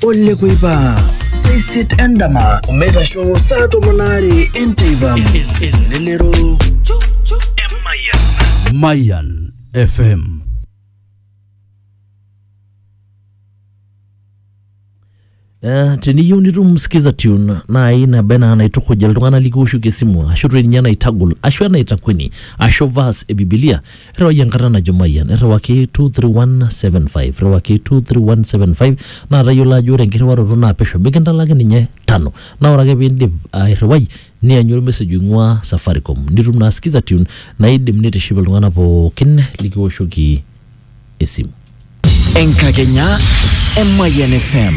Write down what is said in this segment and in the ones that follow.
Ole kuipa seisit endama omeitasho saa tomon aare enteipa. Elelero. Mayan FM. Eh, teniyieu nitum skiza tune naai naba enaa naitukuj iltung'anak likiwoshoki esimu ashu toi ninye enaitagol ashu enaitakueni ashu verse e bibilia irriwai enkarna najo Mayian irriwaki 23175 irriwaki 23175 naa tayiolo ajo ore enkirriwaroto naa pesho mikintalaki ninye tano naa ore ake piindip airriwai nianyu ormesej oing'ua Safaricom nitum naa Skiza Tune naidim nitiship iltung'anak pookin likiwoshoki esimu. Enkakenya e Mayian FM.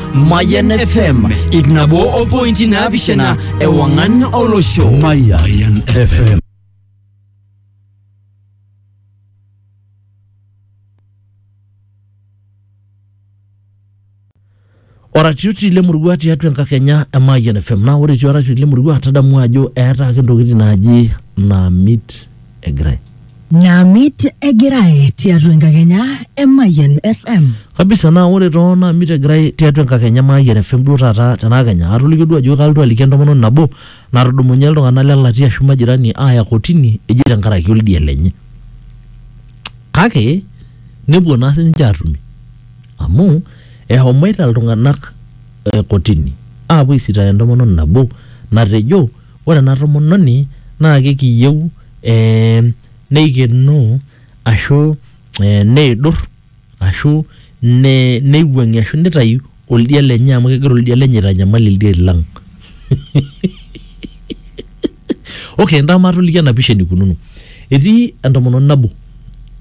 Mayan FM ip nabo o pointi naapishana ewang'an olosho. Mayan FM. oratioti lemurua tiatua enkakenya e Mayian FM. Naa ore etii oratioti lemurua tadamu ajo eeta ake ntokitin naaji naamit egirae Naamit egirae tiatua enkakenya e Mayian FM. kabisa naa ore too naamit egirae tiatua enkakenya maayian fm duo taata tenakenya atolikio duo ajo kalotu aliki entomononi nabo natudumunye iltung'anak le latia ashu majirani aaya kotini eji tenkaraki oldia lenye kake nepuo naa sininche aatumi amu ehomoita iltung'anak eh, kotini aapuo aisitaaya entomononi nabo natejo ore ena tomononi naa kekiiyieu ee neikenoo ashu ee neidur ashu neiwuang'ie ashu neitayu oldia lenye amu kegira oldia lenye aitanyamal ildiain lang. okay ntasho matoliki ena pisha eneikununo. Etii entomononi nabo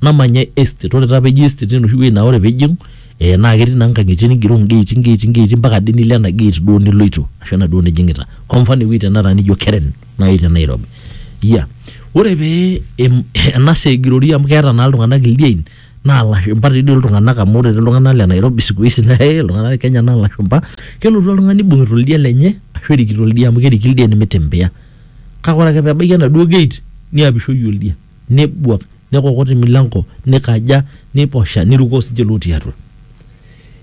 namanya estate ore taa pee eji estate naa enoshi wueji naa ore pee ijing Eh, naa ketii naa nkang'itie nigero ngeeti ngeeti ngeeti mpaka ade nilo ena gate duo niloito ashu ena duo nijing'ita kwa mfano ewueji tenakata nijo Keren nai te Nairobi yeah. ore pee em- ena saa egirori amu keeta naa iltung'anak ildiein naa ilashumpa tii doi iltung'anak amu ore tii iltung'anak le Nairobi siku hizi naa eh, iltung'anak le Kenya naa ilashumpa kelotu oltung'ani ibung'ita oldia lenye ashu erikito oldia amu keriki ildien mitembea kake ore ake pebaiki enaduo gate niapishoi oldia nebuak nekokot emilanko nikaja neiposha nirukoo sinche lotii atua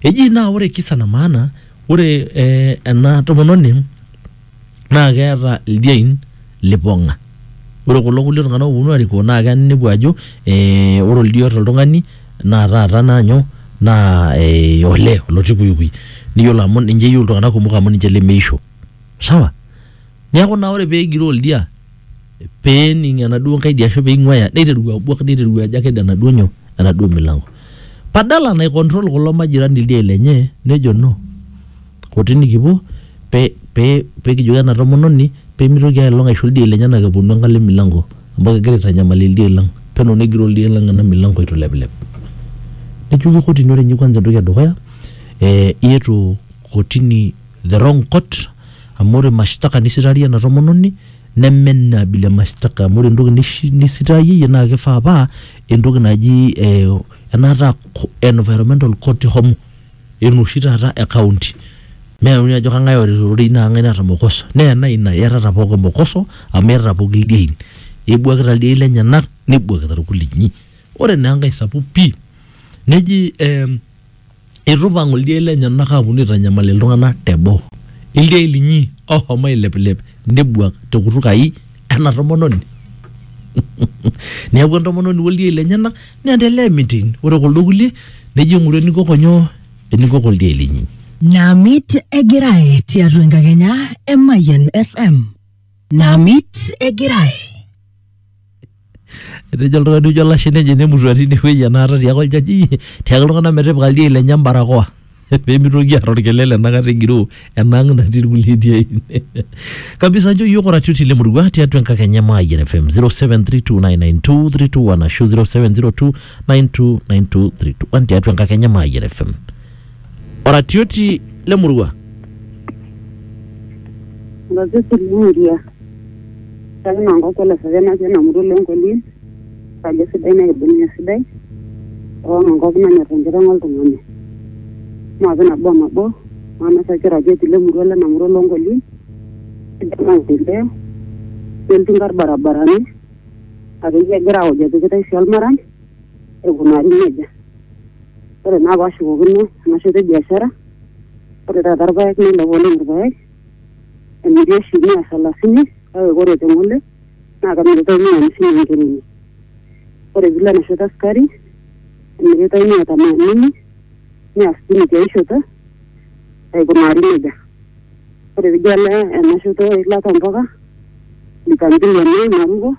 eji naa ore kisa na maana ore eh, ena tomononi naa keeta ildiein lipong'a ore kulo kulie tung'anak oponu arikoo naa keya ninepu ajo eh, ore oldia oota oltung'ani naa taata naa nyoo naa eh, olee olotii kuikui niyiolo amu ninche eyieu iltung'anak kumok amu ninche lemeisho sawa niaku naa ore pegiroo oldia. peening enaduo nkaidi ashu peing'uaya neiteru abuak neiteru ajo aked enaduo nyoo enaduo milango padala nai control kulo majirani ildiein lenye nejo no kotini kipuo pe pe pekijoki ena tomononi pemitoki ailong aisho ildiein lenyenak eponu enkalo e milango amu kegira aitanyamal ildiein lang peno negiroo ildiein lang ena milango eitu ilepilep nejoki kotini ore inye kwanza entoki edukuya eh iyata kotini the wrong court amu ore mashtaka nisitarie ena tomononi. neme ina abila e mashtaka amu ore entoki nishi- nisitayeyie naa kifaa paa entoki naji eh, enaata co- environmental court ihomo enoshi taata e county meyauni ajo kang'ae orita ororei naa kang'ae naata mokoso naa ena ina iyatata pookin mokoso amu iyatata pookin ildiein ibuakita ildiein lenyenak nibuakita irkulinyi ore naa enkae sapuk pii neji eh, Eitu eipang ildiain lenyenak aaponu aitanyamal iltung'ana te boo, ildiain linyi ooshomo ailepilep nebuak te kutuk ai ena tomononi. Neaku entomononi o ldiain lenyena neendelea emiting. Ore kuldo kulie nejo eng'ura enikoko nyoo, enikoko ildiain linyi. Namit Egirai tiatua enkakenya e Mayian FM. Namit Egirai. etejo oltung'ani ojo olashe lenye nemutua tine wueji enaata tiaku oljaji tiaki iltung'anak metipika ildiain lenye embarakoa pemitoki aata orkelele enakata egiroo enang natii irkulie diain kabisa nchoo yiok oratioti lemurua tiatua enkakenya e Mayian FM 0732992321 ashu 0702929231 tiatua enkakenya e Mayian FM oratioti le murua Oratioti le murua. Kake naa enkop ele sesen natii ena murua oleng Kolin. Kajo sidai nikibung'e esidai. Alang enkop nanyor enkiteng oltung'ani. Maape nabo o nabo. Maanosaki oratioti le murua lena murua oloo Nkolin. Sidai maendeleo. Neltu nkarn barabarani. Akeyie egira aoj epikitai sii olmaram. aikunari nejia. Ore naa paashukokino ena shoto e biashara, ore taata irpaek neilepu oleng irpaek emiri oshi mia salasini kake ore te ng'ole naa kemiritai mia amisini enkereji. Ore piilo ena shoto e sukari emiritai mia tamanini, mia sitini tiai shoto aikunari nejia. Ore piijo alo ena shoto e ilata oo mpuka, lita mbili emiai naruko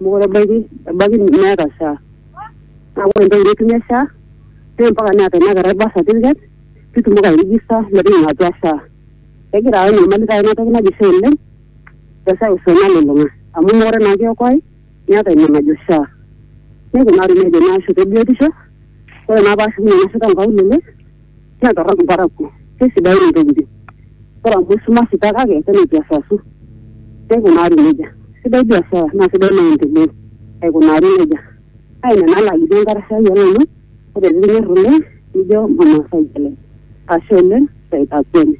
Mokure ebaiki, ebaiki meeta SHA. Naa ore entoki nitumie SHA naa mpaka neeta ina kerai birth certificate pee itumoki airijista metijing'a atua SHA. Kegira ayau enyamali taata ina toki naji SHA oleng te seuseu nalulung'a amu meekure naa kiokoae meeta ina najo SHA. Neikunari nejia naa ashu te biotisho, ore naa paashukunye nanu ashuko nkaulele naa torrok imparakuo kesidain intokitin ore amu isumashita kake penyo kiasasu keikunari nejia sidai biashara naa sidai maendeleo aikunari nejia naa ina naa lajoki enkarasha ai olong'u ore pikinyorr oleng nijo mama saitale ashe oleng saitakueni.